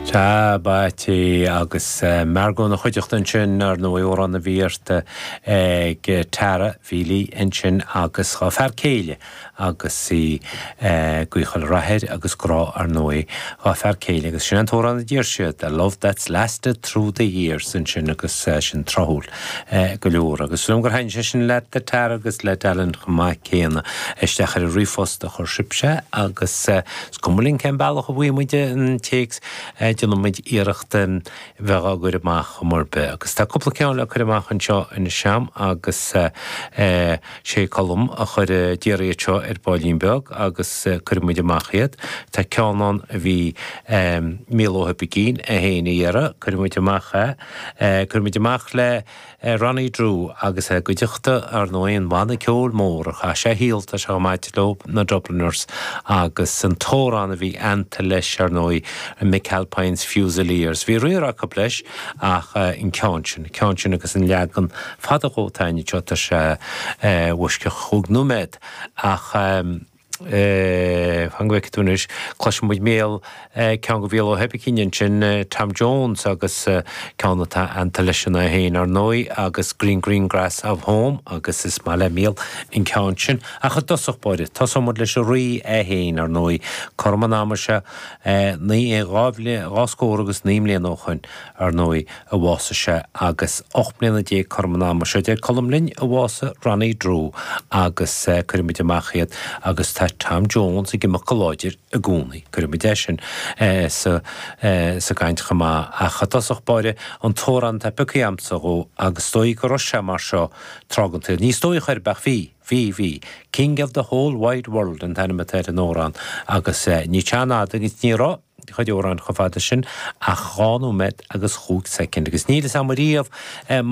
Tá Paddy agus Margo ina chuideachta ansin, ar ndóigh, amhrán a bhí pioctha ag Tara Feely ansin agus dá fear céile agus í ag guíochtáil rath air agus grá, ar ndóigh, dá fear céile agus sin an t-amhrán a d'iarr sí, 'A Love That's Lasted Through The Years' ansin agus sin tráthúil go leor agus tá súil a'm gur thaithin sé le Tara agus le Alan chomh maith céanna. Isteach ar an ríomhphost a chuir sise agus Is cuma linn cén bealach a bhfaighidh muid an téacs, déanfaidh muid iarracht iad a chur amach ar aon mhodh ar bith agus. Tá cúpla ceann le cur amach anseo in éindí agus sé Colm a chuir d'iarr iad seo ar baillín beag agus cuirfidh muid amach iad. Tá ceann ann a bhí Míol Ó hOibicín a fhéin a iarraidh, cuirfidh muid amach é. Cuirfidh muid amach le. Ronnie Drew agus é i gcuideachta ar ndóigh an bhanna ceoil mór a chaith sé a shaol, tosach ama leo, na Dubliners, agus an t-amhrán a bhí aitheanta leis, ar ndóigh, McAlpine's Fusiliers. Bhí riar acu leis ach an ceann sin, an ceann sin agus an leagan fada dhó atá anseo, tá sé os cionn chúig nóiméad ach. fan go bhfeice tú anois, cloisfidh muid Míol, ceann do Mhíol Ó hOibicín ansin, Tom Jones agus ceann atá aitheanta leis an fear é féin, ar ndóigh, agus Green Green Grass of Home agus is maith le Míol an ceann sin. Ach i dtosach báire, tosóidh muid leis an Rí é féin, ar ndóigh, cothrom an ama seo dhá scór agus naoi mbliana ó shoin, ar ndóigh, a bhásaigh sé agus ocht mbliana déag cothrom an ama seo, deir Colm linn, a bhásaigh Ronnie Drew agus cuirfidh muid amach iad agus tá Tom Jones ag imeacht go láidir i gcónaí. Cuirfidh muid é sin san áireamh chomh maith ach i dtosach báire an t-amhrán atá pioctha agamsa dhó agus is dóigh go raibh sé mar seo tráth den tsaol. Ní is dóigh, ar chaoi ar bith, ach bhí, bhí, bhí. King of the Whole Wide World an t-ainm atá ar an amhrán agus ní ceann fada é chuid amhráin chomh fada sin ach dhá nóiméad agus chúig soicind agus níl fhios a'm riamh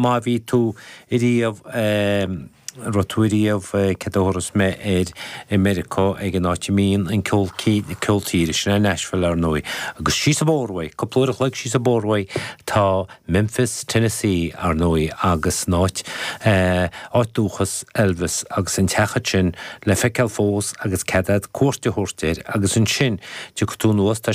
má bhí tú ariamh, a' raibh tú riamh, céard a thabharfas mé air, i Meiriceá ag an áit a mbíonn an ceol, ceol tíre, sin é Nashville ar ndóigh. Agus síos a' bóthar, cúpla uair a chloig síos a' bóthar tá Memphis, Tennessee ar ndóigh agus an áit, áit dúchas Elvis agus an teach a'd sin le feiceáil fós agus cead a'd cuairt a thabhairt air agus ansin tiocfaidh tú anuas, tá